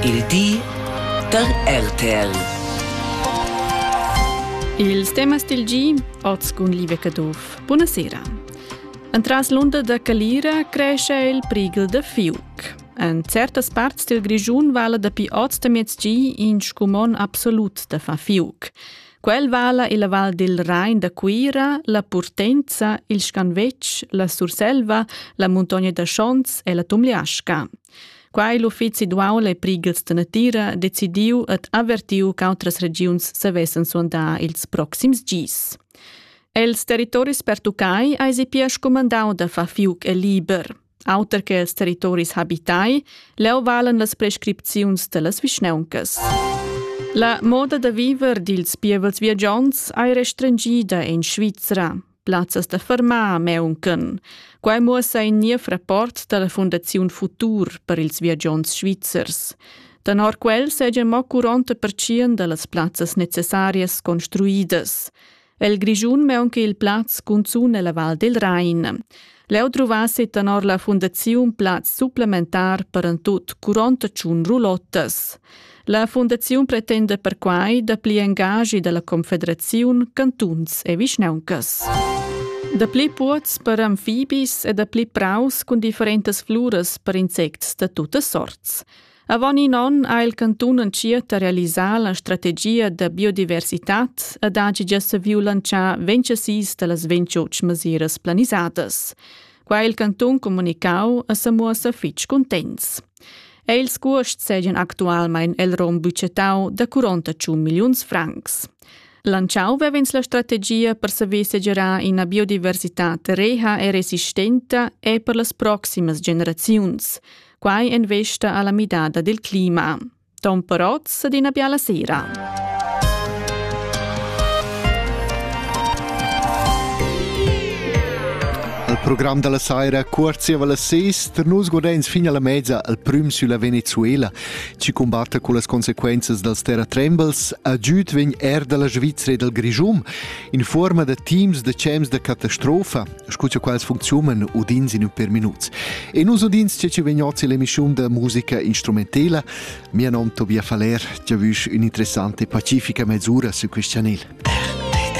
Il di da RTL. Ils temas del gi, oz cun Live Caduff. Buonasera. Entras l'onda da Calira cresce il prigel da fiuc. En certas parts del Grischun vala dapi oz da miezgi in scumon absolut da fa fiuc. Quel vala il val del Rhein da Cuira, la Purtenza, il Scanvetg, la Surselva, la Montogna da Schons e la Tumliasca. Quai l'uffizi d'uaul e prigels da natira decidiu ed avertiu ch'autras regiuns savessan suandar ils proxims gis. Els territoris pertuccai eisi pia scumandau da far fiuc e liber. Auter che els territoris habitai, leu valen las prescripziuns dallas vischnauncas. La moda da viver dils pievels viagiants ei restringida en Svizra. plazzas da fermar meuncan. Quai muossa in niev rapport dalla Fundaziun Futur per ils viagiants svizzers. Tenor quel sejan mo 40% dallas plazzas necessarias construidas. El Grischun meunca il plaz cunzun ella Val del Rain. Leu druvassi tenor la fundaziun plaz supplementar per en tut curonta tschun rulottas. La fundaziun pretenda perquai dapli engagi dalla confederaziun, cantuns e vischnauncas. Dapli puots per amfibis e dapli praus cun differentas fluras per insects da tuttas sorts. Avon in onn ha il cantun entschiet da realisar la strategia da biodiversitad ed ha gia saviu lantschar 26 dallas 28 mesiras planisadas. Qua il cantun comunicau e sa muossa fitg contents. Ei ils cuosts seigien actualmein el rom budgetau da 41 milliuns francs. Lanciau vevens la strategia per saver segerar ina biodiversitad reha e resistenta e per las proximas generaziuns. Quai en vesta alla midada del clima. Tom Perotz d'ina biala sera. Al program della saira cuorziava la sest, nus guardens fin alla mezza al prüm sulla Venezuela, ci combatta con las conseguences dals terratrembels, agiud vegn er dalla Svizzera e dal Grischum, in forma da teams de cems de catastrofa, scu cha quels funcziunan udins in ün per minuts. E nus udins che ci vegn ozi l'emissiun da musica instrumentela. Mia nom Tobia Faller, giavüsch ün'interessante pacifica mesura su quest chanel.